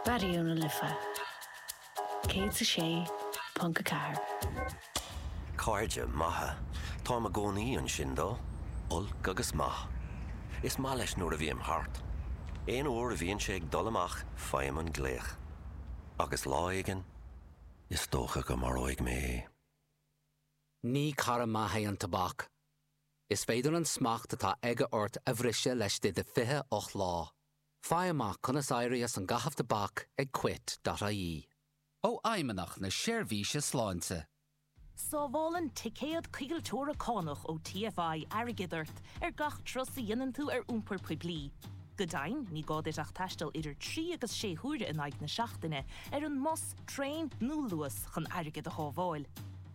Raidió na Life 106.4. Cairde maithe. Táim i gcónaí ansin dó. Olc agus maith. Is maith leis nuair a bhím thart. Aon uair a bhíonn sé ag dul amach faighim an glaoch. Agus lá éigin, is dócha go maróidh mé é. Ní cara maith é an tobac. Is féidir an smacht atá aige ort a bhriseadh leis de do 28 lá. Faigh amach conas éirí as an gcaitheamh tobac ag Quit.ie. Ó Fheidhmeannach na Seirbhíse Sláinte. Sábhálann ticéad coigilteora cánach ó TFI airgead ort ar gach turas a dhéanann tú ar iompar poiblí. Go deimhin, ní gá duit ach taisteal idir trí agus sé huaire in aghaidh na seachtaine ar an mbus, traein nó Luas chun airgead a shábháil.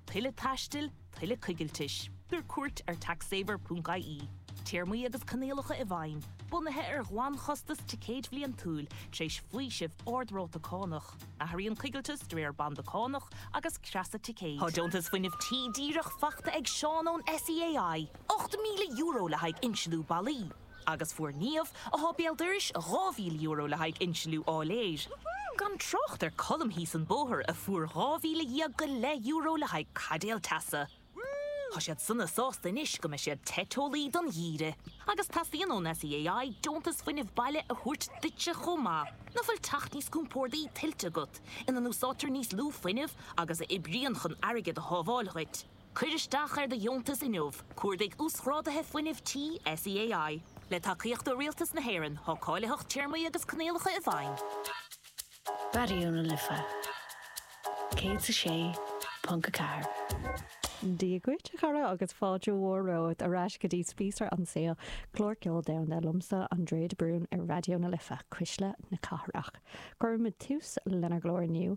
Tuilleadh taistil? tuilleadh coigiltis, tabhair cuairt ar taxsaver.ie. Téarmaí agus coinníollacha i bhfeidhm, bunaithe ar ghlanchostas ticéid bhliantúil, tar éis faoiseamh ard-ráta cánach. Athraíonn coigilteas de réir banda cánach agus creasa ticéid. Tá Deontas Fuinnimh Tí díreach faighte ag Seán ón SEAI, €8,000 le haghaidh insliú ballaí. Agus fuair Niamh, atá béal dorais, €2,000 le haghaidh insliú áiléir. Gan trácht ar Colm thíos an bóthar a fuair dhá mhíle dhéag go leith euro le haghaidh caidéal teasa. Tá siad sona sásta anois go mbeidh siad te teolaí don gheimhreadh. Agus teastaíonn ón SEAI deontas fuinnimh baile a thabhairt duitse chomh maith. Nach bhfuil teach níos compordaí tuillte agat, ina n-úsáidtear níos lú fuinnimh agus a oibríonn chun airgead a shábháil dhuit? Cuir isteach ar do dheontas inniu, cuardaigh Uasghráduithe Fuinnimh Tí SEAI. Le tacaíocht ó Rialtas na hÉireann, tá cáilitheacht, téarmaí agus coinníollacha i bhfeidhm. Raidió na Life 106.4. Dia dhuit, a chara, agus fáilte mhór romhat ar ais go dtí Spíosra an tSaoil, clár ceoil domhanda liomsa, Andrea de Brún, ar Raidió na Life, cuisle na cathrach. Cuirimid tús lenár gclár inniu